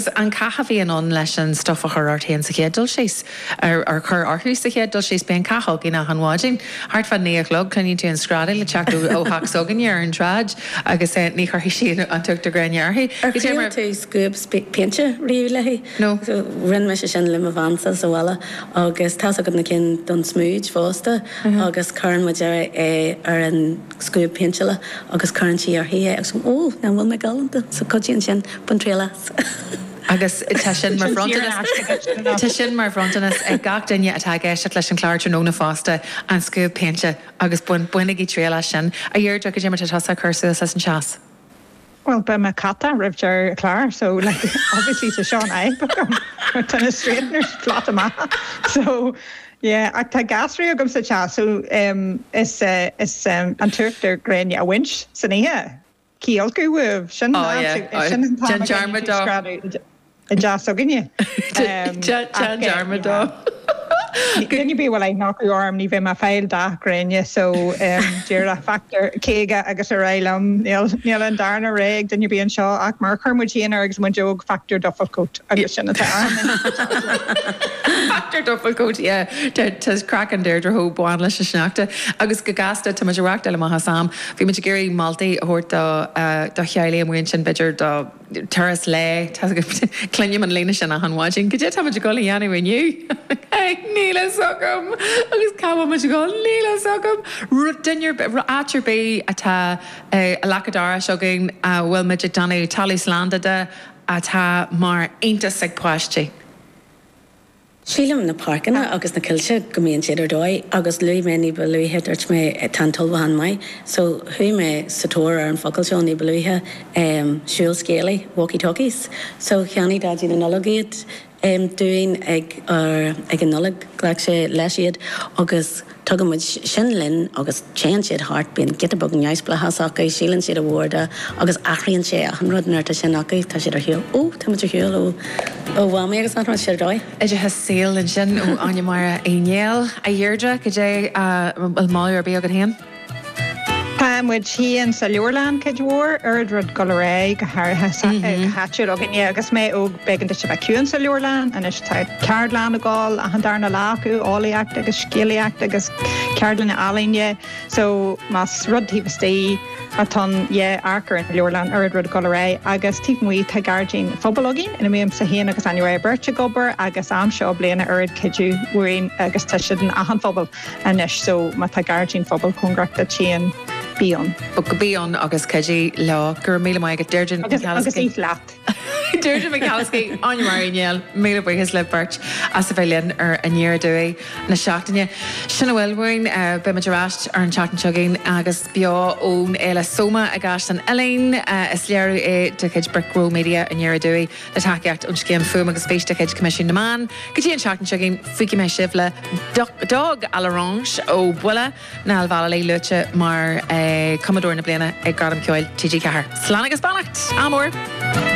Sea, an cath a bhíonn ann leis an stuf a chur ort fhéin sa chéad dul síos, ar ar chur orthu sa chéad dul síos, bíonn cath againn achan mhaidin, thart fá naoi a chlog, cluineann tú an screadaíl ag teacht ó theach s'againne ar an tsráid agus ní chuirfidh sí an t-uachtar gréine uirthi. Ar thriail tú scuab péinte riamh léi? No. Rinn mise sin le mo cheannsa sa bhaile agus tá's agat na cinn don smúid fosta agus cuireann muid é ar an. scuab péinteála agus cuireann sí uirthi é agus Ó, an bhfuil mé galánta? So cuidíonn sin, bain triail as. Agus tá sin mar bhronntanas, tá sin mar bhronntanas ag gach duine atá ag éisteacht leis an chlár tráthnóna fosta, an scuab péinte agus bain, bainigí triail as sin. A Dheirdre, cad é mar atá tusa ag cur suas leis an teas. Bhuel, beidh mé caite roimh deireadh an chláir so, like, obviously tá seo ina fhadhb agam mar tá na straighteners flat amach so, yeah, ach tá gasúraí agam sa teach so em is é, is é an t-uachtar gréine a bhaint daofa san oíche, cionn is go bhfuil, sin an Oh fhadhb yeah, so, oh, déan dearmad de, sin an t-am a gcaithfidh tú screadadh. i dteach s'againne. Déan dearmad dó. Duine ar bith a bhfuil aithne acu orm ní bheidh mé ag fáil dath gréine so díreach factor caoga agus ar aghaidh liom. Níl an darna rogha ag duine ar bith anseo ach mar a chuir muid féin orainn agus muid óg factor dufflecoat agus sin atá ann. Factor dufflecoat yeah tá craiceann Deirdre chomh bán leis an sneachta agus go gasta tá muid ag reáchtáil amach as am bhí muid ag iarraidh moltaí a thabhairt do do theaghlaigh amuigh ansin b'fhéidir do Turas lae, cluinim an líne sin achan mhaidin, cad é táimid a dhul a dhéanamh inniu? Níl fhios agam! Agus cá bhfuilimid a dhul? Níl fhios agam! Rud, duine ar bith, áit ar bith atá i leac an dorais againn a bhfuilimid ag déanamh talamh slán de atá mar iontas ag páistí. Sílim na páirceanna agus na coillte go mbíonn siad ar dóigh agus luaigh mé ní ba luaithe, dúirt mé tá an t-ullmhúchán maith so chuaigh mé sa tóir ar an focal seo ní ba luaithe, em, siúl scéalaí, walkie talkies. So cheannaigh Daidí na Nollag iad, em, dúinn ag ár, ag an Nollaig, ghlac sé leis iad agus. Tugann muid sin linn agus téann siad thart, bíonn giota beag neamhspleáchas acu, síleann siad ar bhealach, agus athraíonn sé achan rud nuair atá sin acu, tá siad ar shiúl, ó tá muid ar shiúl ó ó Mhamaí agus achan rud, tá siad ar dóigh. Oideachas saoil ansin ó Áine Máire Uí Néill. A Dheirdre, cad é, an bhfuil moladh ar bith agat féin? Tá muid féin sa leabharlann cuid mhór, oiread rud ag dul ar aghaidh, go háirithe go háitiúil againne. Agus mé óg, b'éigean duit a bheith ciúin sa leabharlann. Anois tá ceardlann ag gabháil achan darna lá acu, eolaíocht agus scéalaíocht agus ceardlanna ealaíne. So, más rud taobh istigh atá ann, yea, amharc ar an leabharlann, oiread rud ag dul ar aghaidh. Agus taobh amuigh tá gairdín pobail againn ina mbímse féin agus Áine Mháire beirt ag obair agus am seo bliana oiread cuidiú uainn agus tá siad in achan phobal. anois so má tá gairdín phobail cóngarach duit féin bí ann. Bí ann agus cuidigh leo. Go raibh míle maith agat Deirdre Nic Chathasaigh. Agus oíche leat. Deirdre Nic Chathasaigh, Áine Mharie Néill, míle buíochas libh beirt as a bheith linn ar Aniar Aduaidh na seachtaine. Sin a bhfuil uainn. Beimid ar ais ar an tseachtain seo chugainn agus beo ón Fhéile Soma i gCaisleán Uidhlín. Is léiriú é de chuid Brick Row Media, Aniar Aduaidh. le tacaíocht ón scéim Fuaim agus Fís de chuid Coimisiún na Meán. Go dtí an seachtain seo chugainn, fágfaidh mé sibh le Duck à l'Orange ó Buille, Niall Vallely luaite mar Chumadóir na Bliana ag Gradaim Ceoil TG4. Slán agus beannacht. Ádh mór!